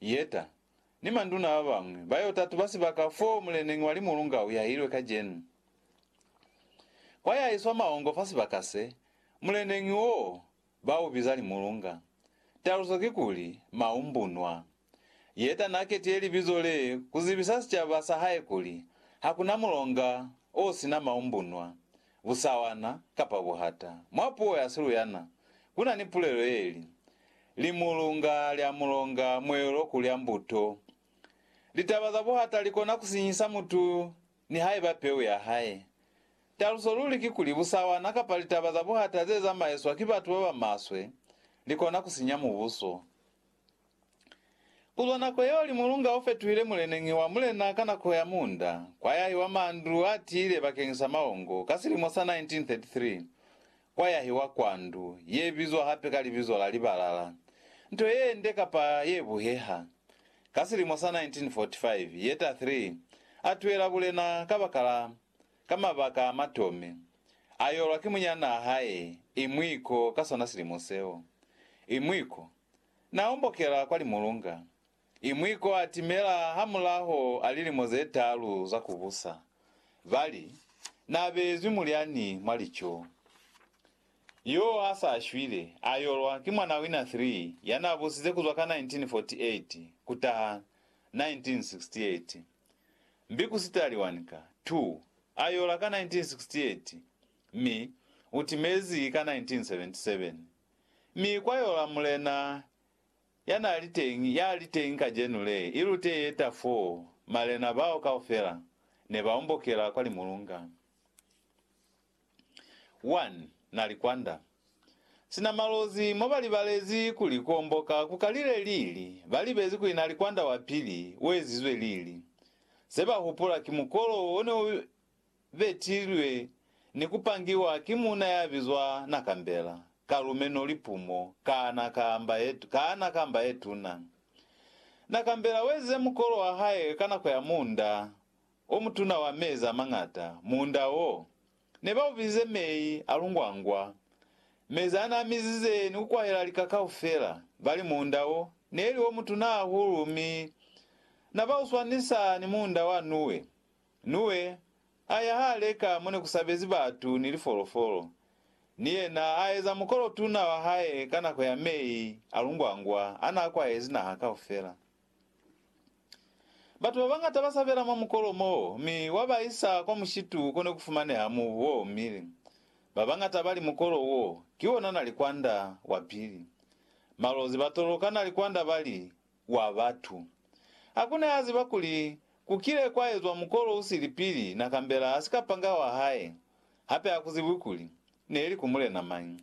Yeta, ni manduna ba bañwi, ba yo tatuba sibaka foo muleneñi wa limulunga u yahilwe kacenu. Kwa ya iswa mahongo fa sibaka se, muleneñi wo, ba u biza limulunga. Taluso ki kuli, Maumbunwa. Yeta na ketile libizo le ku zibisa sicaba sa hae kuli, Hakuna mulonga o sina maumbunwa. busawana, kapa buhata. Mwa puo ya Siluyana, ku na ni pulelo ye li, Limulunga lya mulonga mweelo ku lya mbuto. Litaba za buhata li kona ku sinyisa mutu nihaiba peu ya hae. Taluso luli kikuli busawana kapa litaba za buhata ze zamaiswa ki batu ba ba maswe li kona ku sinya mubuso. Ku zwa nako yeo limulunga o fetuhile muleneñi wa mulena ka nako ya muunda, kwa yahi wa mandu a tiile bakeng sa maongo ka silimo sa 1933, kwa yahi wa kwa ndu ye bizwa hape ka libizo la libalala, nto ye nde kapa ye buheha. Ka silimo sa 1945, Yetta ii a tuela bulena kabakala ka mabaka a matome, a yolwa ki munyanaa hae, Imwiko, ka sona silimo seo. Imwiko. Na ombokela kwa limulunga, i mwi ko a timela hamulaho a lilimo ze talu za ku busa. Ba li, Na beezwi mulyani mwa lico. Yo a sa shwile, a yolwa ki mwana wina three ya na busize ku zwa ka 1948 ku taha 1968. Mbi ku sitali wani ka two a yola ka 1968, mi u timezi ka 1977. Mi kwa yola Mulena ya n'a li teñi, ya li teñi kacenu le, i lute ye ta fo, malena bao kaufela ne ba ombokela kwa limulunga. One na likwanda, sina malozi, mo ba libalezi kuli ku omboka ku kalile lili, ba libezi kuli na likwanda wa pili u ezizwe lili. Se ba hupula ki mukolo o ne u betilwe ni ku pangiwa ki muuna ya bizwa Nakambela, ka lumeno lipumo, kaana kamba ye, kaana kamba ye tuna. Nakambela wezize mukolo wa hae ka nako ya muunda o mutuna wa mezi a mañata, muunda wo ne ba ubizize mei a lungwangwa, mezi a n'a mizize ni ku kwahela lika kaufela, bali muunda wo ne li o mutuna hahulu mi na ba u swanisa ni muunda wa Nuwe. Nuwe a ya ha leka mo ne ku sabezi batu ni lifolofolo, ni yena a eza mukolo tuna wa hae ka nako ya mei a lungwangwa a n'a kwahezi naha kaufela. Batu ba bañata ba sabela mwa mukolo m'o, mi wa ba isa kwa mushitu ko ne ku fumaneha mubu o omile. Ba bañata ba li mukolo w'o ki wona nalikwanda wa pili. Malozi ba toloka nalikwanda ba li, wa batu. Hakuna ya ziba kuli ku kile kwa ezwa mukolo u sili pili na kambela ha sika panga wa hae, hape ha ku zibwi kuli ne li ku mulena mañi.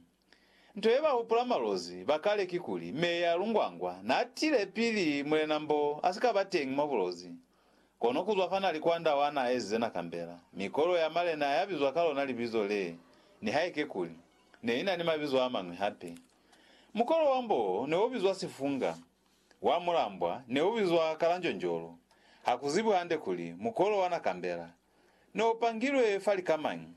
Nto ye ba hupula malozi ba kale kikuli Meya Lungwangwa na tile pili Mulena Mbo a si ka ba teñi mwa bulozi. Kono ku zwa fa na li kwanda wa na ezize na kambela mikolo ya malena ya bizwa ka lona libizo le, nihaike kuli ne i na ni mabizo a mañwi hape. Mukolo wa mbo ne o bizwa Sifunga, wa mulambwa ne u bizwa Kalanjonjolo, ha ku zibwi hande kuli mukolo wa Nakambela ne o pangilwe fa lika mañi.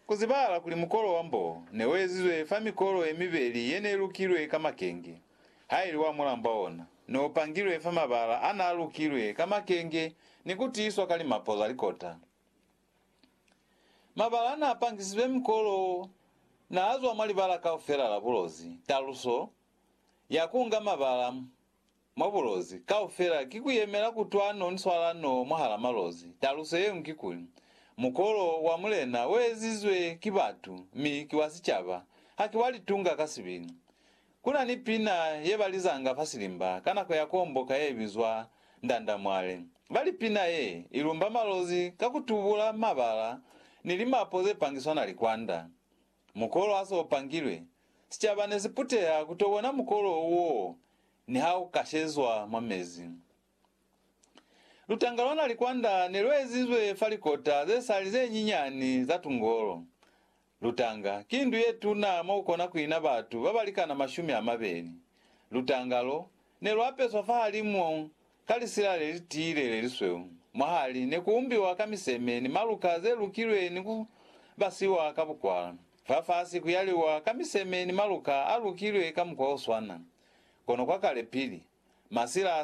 Ku zibahala kuli mukolo wa mbo ne u ezizwe fa mikolo ye mibeli ye ne lukilwe ka makenge, ha ili wa mulambwa ona ne o pangilwe fa mabala a n'a lukilwe ka makenge ni ku tiiswa ka limapo za likota. Mabala n'a pangisizwe mikolo wo n'a zwa mwa libala kaufela la bulozi. Taluso ya ku nga mabala mwa bulozi kaufela ki ku yemela kutwano ni swalano mwahal'a malozi. Taluso ye ñwi ki kuli, mukolo wa Mulena u ezizwe ki batu mi ki wa sicaba, haki wa litunga ka sibili. Ku na ni pina ye ba lizanga fa silimba ka nako ya kuomboka ye bizwa Ndandamwale. Ba li pina ye i lumba malozi ka ku tubula mabala ni limapo ze pangiswa na likwanda. Mukolo ha se u pangilwe, sicaba ne si puteha ku to bona mukolo wo niha u kashezwa mwa mezi. Lutanga lwa nalikwanda ne lu ezizwe fa likota ze sali ze nyinyani za tungolo. Lutanga ki ndu ye tuna mo ku kona ku ina batu ba ba likana mashumi a mabeli. Lutanga lo ne lu apeswa fahalimu ka lisila le li tiile le lisweu. Mwahali ne ku umbiwa ka miseme ni maluka ze lukilwe ni ku basiwa ka bukwala. Fafasi ku yaliwa ka miseme ni maluka a lukilwe ka mukwa o swana. Kono kwa kale pili masila